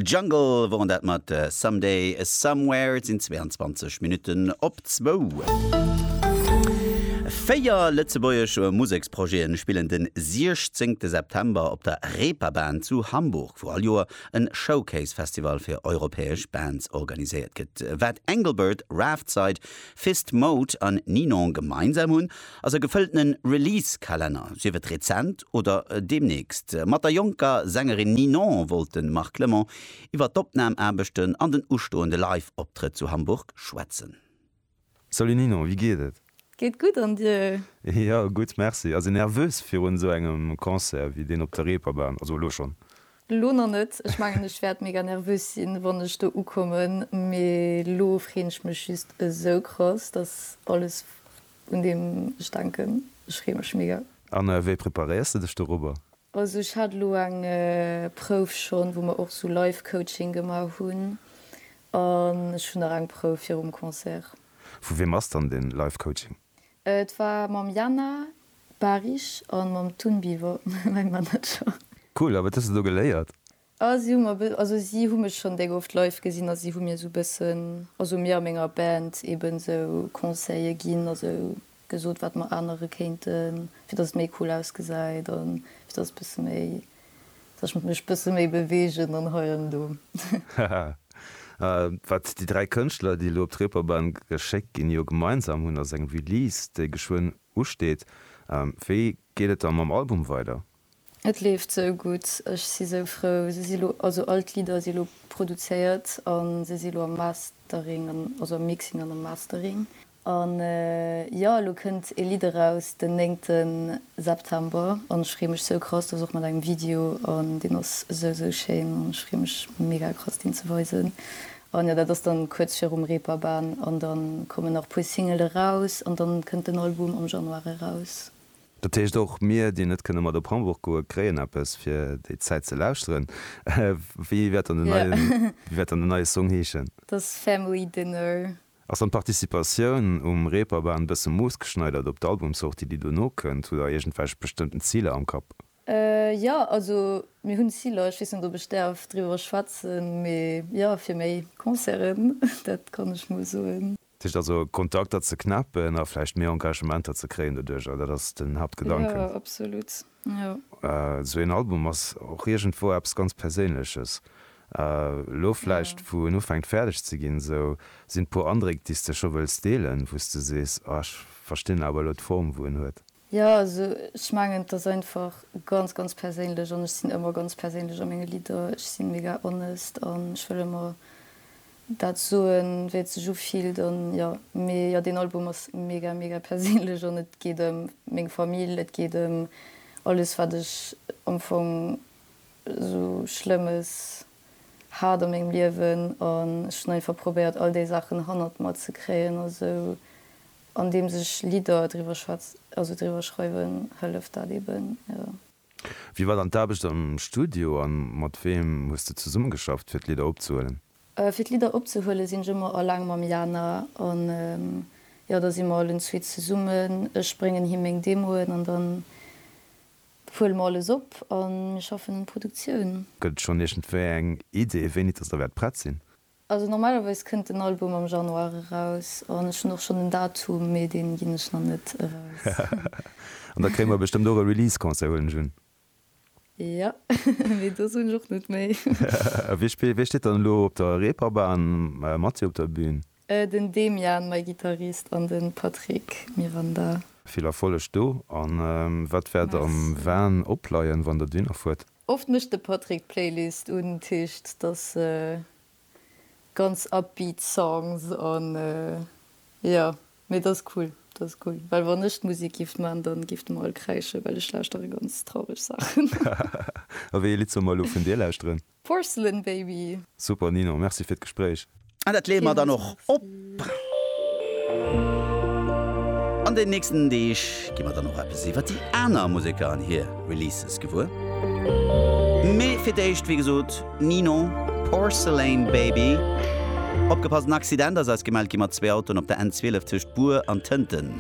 Jungle woren dat mat Someday Somewhere. Et sinn 22 Minutten op zwou. Véier lëtzebuergesch Museksprojete spillen de 16 September op der Reeperbahn zu Hamburg, wou all Joer e Showcase-Festival fir europäesch Bands organiséiert gëtt. Wat Engelbert, Raftside, Fist Mode an Ninon gemeinsam hunn, ass e gefëlltene Release-Kalenner, sief et rezent oder deemnächst. Mat der jonker Sängerin Ninon wollt de Marc Clement iwwer d'Opnam-Aarbechten an den ustoende Live-Optrëtt zu Hamburg schwätzen. Salut Ninon, wéi geet et? Geet gutt, an dir? Jo, gutt, merci. Ass een nervös virun esou engem Concert wéi deen op der Reeperbahn? Also elo schonn. Elo nach net. Ech mengen, ech wäert mega nervös sinn, wann ech do ukommen, mee elo freen ech mech just esou krass, dass alles. Un deem ech denken, ech freeë mech mega. An wéi preparéiers de dech dorobber? Also ech hat elo eng Prouf schonn, wou mer och esou Live Coaching gemaach hunn, an ech hunn nach eng Prouf virum Concert. Vu wiem ass dann den Live Coaching? Et war mam Jana Bahrich an mam Tun Biver, mäi Manager. Cool, a wat hues de do geléiert? Ah si hu mer be, also si hu mech schonn déck oft live gesinn a si hu mir esou bëssen, also mir a menger Band eben esou Conseille ginn, also gesot wat mer anere kéinten, fir dass et méi cool ausgesäit a fir dass bësse méi, dass ech mech bësse méi beweegen an hei an do. Haha. A wat déi dräi Kënschtler, déi elo op d'Reeperbahn geschéckt ginn, jo gemeinsam hunn, ass eng Release, déi geschwënn usteet. Wéi geet et da mam Album weider? Et leeft sou gutt, ech si sou frou. Se si lo, also all d'Lidder si lo produzéiert a se si lo am Mastering an, also am Mixing an am Mastering. An jo, elo kënnt ee Lidd eraus den 9. September an ech freeë mech sou krass, dat ass och mat engem Video an deen ass sou sou schéin an ech freeë mech mega krass deen ze weisen. An jo, dat ass dann kuerz virum Reeperbahn an dann kommen nach e puer Single eraus an dann kënnt den Album am Januar eraus. Dat heescht, och mir, déi net kënne mat op Hamburg goen, kréien eppes, fir déi Zäit ze lauschteren. Wéi wäert dann den neien, wéi wäert dann den neie Song heeschen? Et ass Family Dinner. Ass dann d'Participatioun um Reeperbahn bësse moossgeschneidert op d'Albumsortie, déi dono kënnt? Hutt Der iergendwelch bestëmmten Ziler am Kapp? Jo, also mir hunn Ziler. Ech weess net, ob ech däerf driwwer schwätzen, mee jo, fir méi Concerten, dat kann ech mol soen. Dat heescht also, Kontakter ze knäppen a vläicht méi Engagementer ze kréien doduerjer, dat ass den Haaptgedanken? Jo, absolut, jo. Esou een Album ass och iergendwou eppes ganz Perséinleches. Elo vläicht, wou en ufänkt fäerdeg ze ginn esou, sinn et puer Andréck, déi s de scho wëlls deelen, wou s de sees, ah, ech verstinn awer elo d'Form, wou en huet? Jo, also ech mengen et ass einfach ganz ganz perséinlech an ech sinn ëmmer ganz perséinlech a menge Lidder. Ech sinn mega honest an ech wëll ëmmer dat soen wéi et sech ufillt an jo. Mee jo deen Album ass mega mega perséinlech an et geet ëm meng Famill, et geet ëm alles wat ech am Fong esou schlëmmes hat a mengem Liewen an ech hunn einfach probéiert all déi Saachen hannert mer ze kréien a sou Andeems ech Lidder driwwer schwätz, also driwwer schreiwen, hëlleft dat eben, jo. Wéi war dann d'Aarbecht am Studio a mat weem hues de zesummegeschafft, fir d'Lidder opzehuelen? Fir d'Lidder opzehuelen, sinn ech ëmmer alleng mam Jana an, jo, da si mer allen zwee zesummen. Ech bréngen him meng Demoen an dann huele mer alles op a mir schaffen un Produktioun. Gëtt et schonn iergendwéi eng Idee, wéini dass der wäert prett sinn? Also normalerweis kënnt den Album am Januar eraus an ech hunn och schonn en Datum, mee deen ginn ech nach net eraus. An da kréie mer bestëmmt och e Release Concert, huelen ech un? Jo, mee do soen ech och net méi. A wie spillt, wie steet dann elo op der Reeperbahn mat dir op der Bühn? Den Demian, mäi Gittarist, an den Patrick Miranda. Vill Erfolleg do, an wat wäert am Van opleien wann der d'Winner fuert? Oft mécht de Patrick d'Playlist un Tischt, dass se ganz upbeat Songs an jo mee dass cool, dass cool well wann ech d'Musik giff man dann giff de mer all kräische well ech lauschtere ganz traureg Saachen. A wéi ee Lidd soll mer elo vun dir lauschteren? Porcelain Baby. Super Ninon, merci fir d'Gespréich. An dat leeë mer dann och op. An den nächsten Deeg gi mer dann och eppes iwwer déi aner Museker an hir Releases gewuer. Mee fir d'éischt, wéi gesot, Ninon, Porcelain Baby. Opgepasst, en Accident ass eis gemellt gi mat zwee Autoen op der N12 tëscht Bur an Tënten.